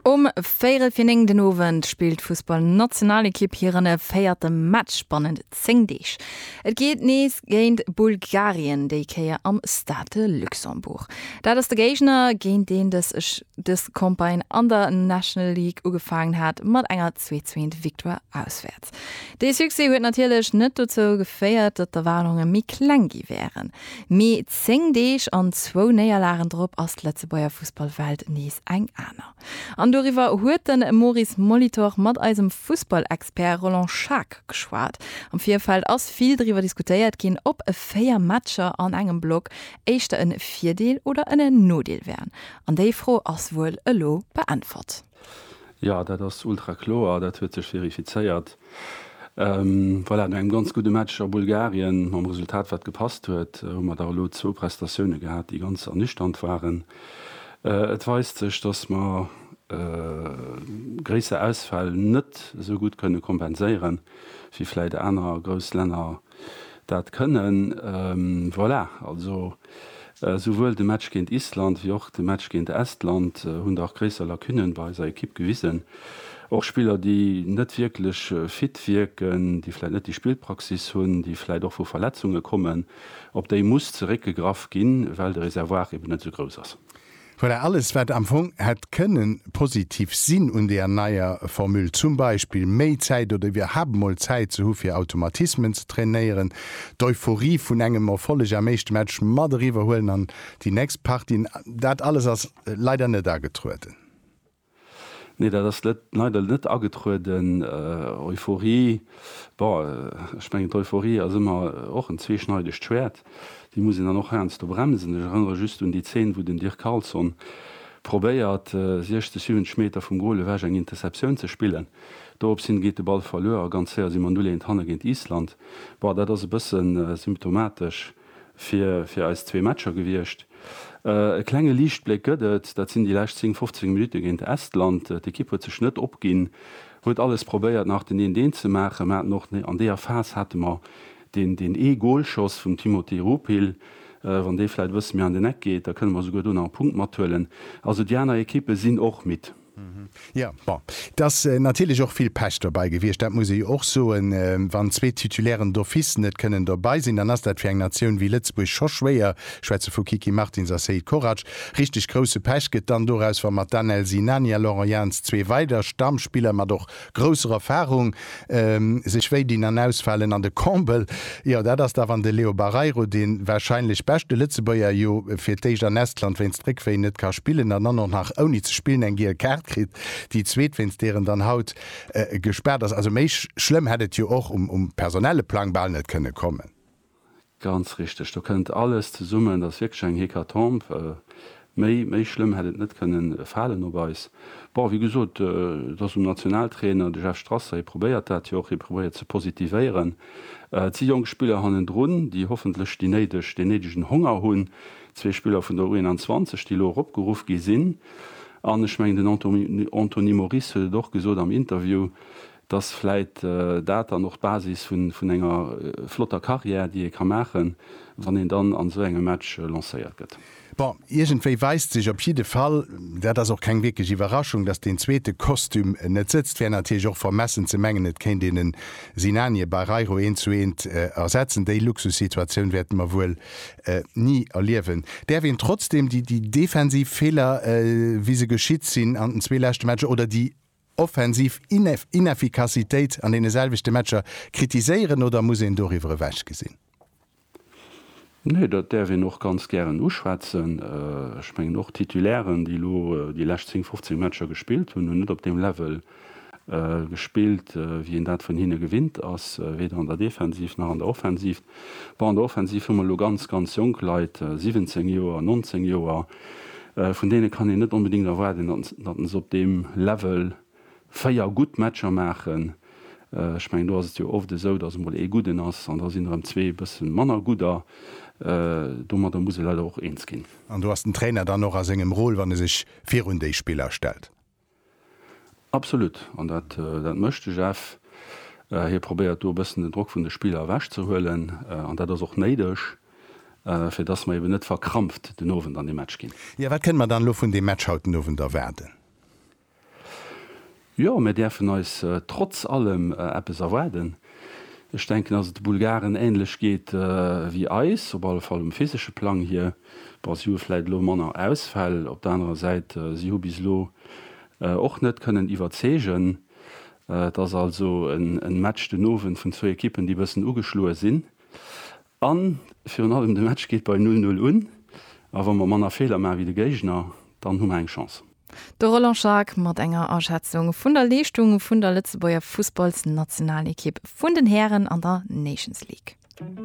Um véirel fir 9 den Owend spillt d'Fussballnationalekipp hiren véierte Match bannent 10 Deeg. Et geet nees géint Bulgarien, déi Kéier am Stade de Luxembourg. Dat ass de Géigner, géint deen dës Campagne an der National League ugefaangen hat mat enger Zweetswéint-Victoire auswäerts. Stad. Dee Succès huet natierlech net dozou geféiert, datt d'Erwaardunge méi kleng gi wären. Mee 10 Deeg an zwou Néierlagen drop ass d'Lëtzebuerger Fussballwelt nees eng aner. An doriwwer huet de Maurice Molitor mat eisem Fussballexpert Roland Schaack geschwat. Am Virfeld ass vill driwwer diskutéiert ginn, ob 4 Matcher an engem Block éischter e Virdeel oder en Nodeel wären. An déi Fro ass wuel elo beäntwert. Jo, dat ass ultra kloer, dat huet sech verifizéiert. Voilà, no engem ganz gudde Match a Bulgarien, mam Resultat wat gepasst huet, hu mer da elo zwou Prestatioune gehat, déi ganz ernüchternd waren. Et weist sech, datt mer gréisser Ausfäll net esou gutt kënne kompenséieren, wéi vläicht aner grouss Länner dat kënnen. Voilà, also souwuel de Match géint Island wéi och de Match géint Estland hunn dach gréisser Lacunnen bei eiser Ekipp gewisen. Och Spiller, déi net wierklech fit wierken, déi vläit net déi Spillpraxis hunn, déi vläit och vu Verletzunge kommen, op déi muss zeréckgegraff ginn, well de Reservoir eben net esou grouss ass. Voilà, alles wat am Fong hätt kënne positiv sinn un deer neier Formule, zum Beispill méi Zäit oder iwwerhaapt emol Zäit ze hu fir Automatismen ze trainéieren, d'Euphorie vun engem Erfolleg am éischte Match mat eriwwer huelen an déi nächst Partie, dat alles ass leider net agetrueden. Nee, dat ass net, leider net agetrueden. Euphorie, bon, ech mengen d'Euphorie ass ëmmer och en zweeschneidegt Schwäert, déi muss een dann och heiansdo bremsen. Ech erënnere just un déi Zeen, wou den Dirk Carlson probéiert, 60, 70 Meter vum Goal ewech eng Interceptioun ze spillen. Dorops hin geet de Ball verluer a ganz séier si mer 0, 1 hanne géint Island. Bon, dat ass e bëssen symptomatesch. fir fir eis zwee Matcher gewiescht. E klenge Liichtbléck gëtt et, dat sinn déi lescht 10, 15 Minutte géint Estland. D'Ekipp huet sech net opginn, huet alles probéiert nach den 1-1 ze maachen. Mer haten och an deeër Phas hate mer deen deen ee Golschoss vum Timothy Ruphil. Wann dee vläit e bësse méi an den Eck geet, da kënne mer souguer do nach e Punkt mathuelen. Also déi aner Ekippe sinn och midd. Jo, bon, et ass natierlech och vill Pech dobäi gewiescht, dat muss ee jo och soen. Wann zwee Titulairen d'office net kënnen dobäi sinn, dann ass dat fir eng Natioun wéi Lëtzebuerg scho schwéier, ech schwätze vu Kiki Martins a Seid Korac. Richteg grousse Pech gëtt dann doraus, wa mat Danel Sinani a Laurent Jans zwee weider Stammspiller, mat och Grousser Erfahrung, sech wéi dinn an ausfalen an de Combel, jo dat ass da wann de Leo Barreiro, de wahrscheinlech beschte Lëtzebuerger, jo fir d'éischt an Estland wéinst Réckwéi net ka spillen an dann och nach ouni ze spillen eng giel Kaart kritt, déi zweet wéinst deer en dann haut gespaart ass. Also méi schlëmm hätt et jo och um personelle Plang bal net kënne kommen. Ganz richteg, do kënnt alles zesummen. Et ass wierklech eng Hécatombe. Méi, méi schlëmm hätt et net kënnen falen op eis. Bon, wéi gesot, et ass um Nationaltrainer, de Jeff Strasser, hie probéiert dat jo och, hie probéiert ze positivéieren. Et si jonk Spiller hannendrun, déi hoffentlech déi néideg, deen néidegen Honger hunn. Zwee Spiller vun der U21, déi elo eropgeruff gi sinn. An ech mengen, den Anto, Anthony Moris huet et och gesot am Interview, Dass vläit dat dann och d'Basis vun enger flotter Carrière, déi ee ka maachen, wann een dann an esou engem Match lancéiert gëtt. Bon, iergendwéi weist sech op jidde Fall, dat ass och keng wierklech Iwwerraschung, dass deen zweete Kostüm net sëtzt. Wär natierlech och vermessen ze mengen, et kéint een en Sinanie Barreiro eent zu eent ersetzen. Déi Luxussituatioun wäerte mer wuel ni erliewen. Däerf een trotzdeem déi defensiv Feeler, wéi se geschitt sinn an den zwee leschte Matcher, oder déi offensiv Inefficacitéit an deene selwechte Matcher kritiséieren oder muss een doriwwer ewech gesinn? Nee, dat däerf een och ganz gären uschwätzen. Ech mengen, och d'Titulairen, déi elo déi lescht 10, 15 Matcher gespillt hunn, hunn net op deem Level gespillt, wéi een dat vun hinne gewinnt ass, weder an der Defensiv nach an der Offensiv. Bon, an der Offensiv hu mer elo ganz, ganz jonk Leit, 17 Joer, 19 Joer, vun deene kann een net onbedéngt erwaarden, datt se op deem Level véier gutt Matcher maachen. Ech mengen, do ass et jo oft esou, datt emol ee Gudden ass an da sinn der erëm zwee e bësse manner Gudder. Domadder muss ee leider och eens ginn. An do ass den Trainer dann och a sengem Rôle, wann e sech virun déi Spiller stellt. Absolut, an dat mécht de Jeff. Hie probéiert do e bëssen den Drock vun de Spiller ewech ze huelen an dat ass och néideg, fir dass mer eben net verkrampft den Owend an dee Match ginn. Jo, wat kënne mer dann elo vun deem Match haut den Owend erwaarden? Jo, mir däerfen eis trotz allem eppes erwaarden. Ech denken, dass et de Bulgaren änlech geet wéi eis, op alle Fall um physesche Plang hier. Bon, si hu vläit elo manner Ausfäll. Op der anerer Säit, si hu bis elo och net kënnen iwwerzeegen. Et ass also e Match den Owend vun zwou Ekippen, déi e bëssen ugeschloe sinn. A virun allem, de Match geet bei null null un. A wa mer manner Feeler maache wéi de Géigner, dann hu mer eng Chance. De Roland Schaack mat enger Aschätzung vun der Leeschtung vun der Lëtzebuerger Fussballsnationalekipp vun den Hären an der Nations League.